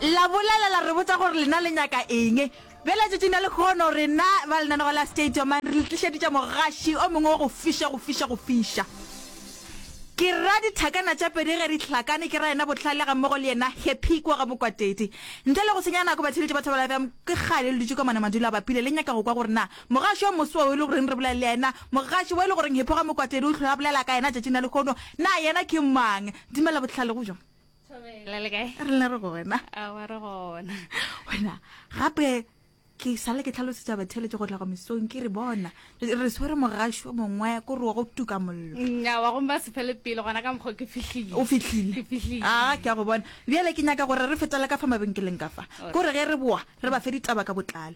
la bolela la re botsa gore lena le nyaka eng bjale tšatšing la lekgono rena ba lenanego la stadium re le tlišeditša mogaši o mongwe wa go fiša go fiša go fiša ke ra dithakana tša pedi ge di hlakane ke ra yena bohlale ga mmogo le yena happy kwa ga mokwatedi ntle le go senya nako batheletši ba thabela bjang ke kgale le dutše ka mane madulo a bapile le nyaka go kwa gore na mogaši wa moso wa o e le goreng re bolela le yena mogaši wa e le goreng hepo ga mokwatedi o tlhola bolela ka yena tšatšing la lekgono na yena ke mang dumela bohlale go bjang thobela le kae re le re gona a wa re gona wena gape ke sale ke tlhalosetsa batheletše go tla go mesong ke re bona re swere mogašo mongwe ko re wa go tuka mollo nya wa gomba sephele pele gona ka mokgwa ke fihlile o fihlile a ke ya go bona bjale ke nyaka gore re fetele ka fa mabenkeleng ka fa ko re ge re boa re ba fe ditaba ka botlalo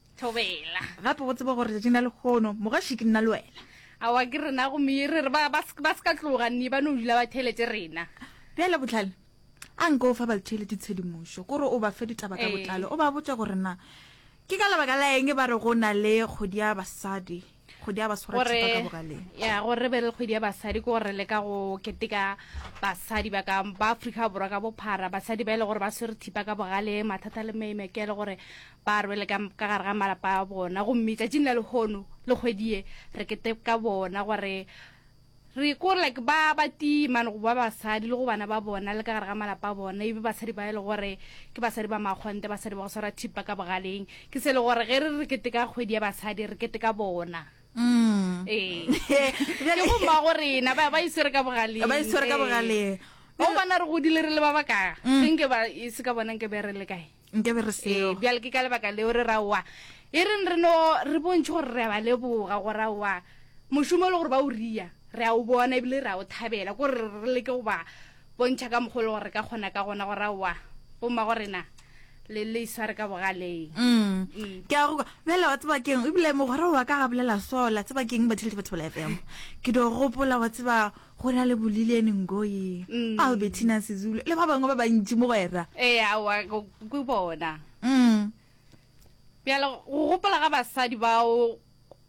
Thobela. Gape go tseba gore tšatšing la lekgono mogaši ke nna le wena. Awa ke rena go mere re ba ba se ka tloga nne ba no dula ba theletše rena. Bjale botlhale a nka o fa balthele ditshedimošo gore o ba fe ditaba ka botlalo o ba botša gore na ke ka lebaka la eng ba re go na le kgodi ya basadi. kgwedi ya baswarathipa ka bogaleng ya gore re be le kgwedi ya basadi ke gore re leka go keteka basadi ba ka ba aforika borwa ka bophara basadi ba e le gore ba swere thipa ka bogale mathata le maimeke le gore ba rwele ka gare ga malapa a bona gomme tšatšing la lehono le kgwedie re keteka bona gore Re ko like ba ba tii mane go ba basadi le go bana ba bona le ka gare ga malapa a bona ebe basadi ba e le gore ke basadi ba makgonte basadi ba go swara thipa ka bogaleng ke se le gore ge re re kete ka kgwedi ya basadi re kete ka bona mm. ee ke bomma go rena ba ba iswere ka bogaleng ba iswere ka bogaleng o bona re godile re le ba baka mm. ke nke ba e se ka bona nke be re le kae nke be re seo bjale ke ka lebaka leo re raowa e reng re no re bontšhe gore re a ba leboga go raowa mošomo e le gore ba o ria re a o bona ebile re a o thabela kore re leke go ba bontšha ka mokgwa e le gore re ka kgona ka gona go raowa bomma go rena le le isware ka bogaleng mm. mm. ke a go bjale wa tseba keng ebile mogwera wa ka ga bolela sola tseba keng batheletše batho bela fm ke do gopola wa tseba go na le bolileni ngoyi mm. albertina sezulu le ba bangwe ba bantši mogwera ee awa ke bona mm. bjale go gopola ga basadi bao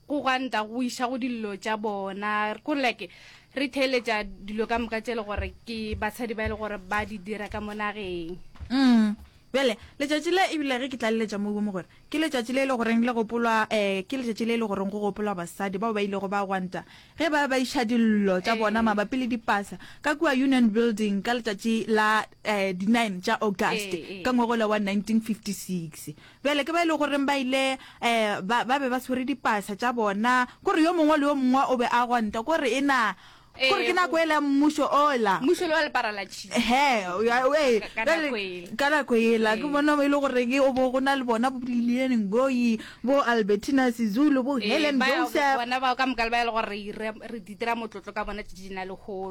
go gwanta go iša go dillo tša bona ko like re theeletša dilo ka moka tše e le gore ke basadi ba e le gore ba di dira ka mo nageng mm. bjale letšatši le ebile ge ke tlaleletša mo bome gore Ke letšatši le e le goreng le gopolwa, ee, ke letšatši le e le goreng go gopolwa basadi bao ba ilego ba gwanta ge e ba ba iša dillo tša bona mabapi le dipasa ka kua Union Building ka letšatši la um di nine tša August ka ngwagola wa nineteen fifty six. Bjale ke ba e le goreng ba ile um ba ba be ba tshwere dipasa tša bona, ko re yo mongwe le yo mongwe o be a gwanta ko re e na gore ke nako ela mmušo ola mmušo wa lepara la tšhi he ka nako ela ke bona e le gore ke o bo go na le bona bo liliane ngoyi bo albertina sizulu bo helen joseph bona bao ka moka le ba e le gore re ditira motlotlo ka bona tšatši di na le hono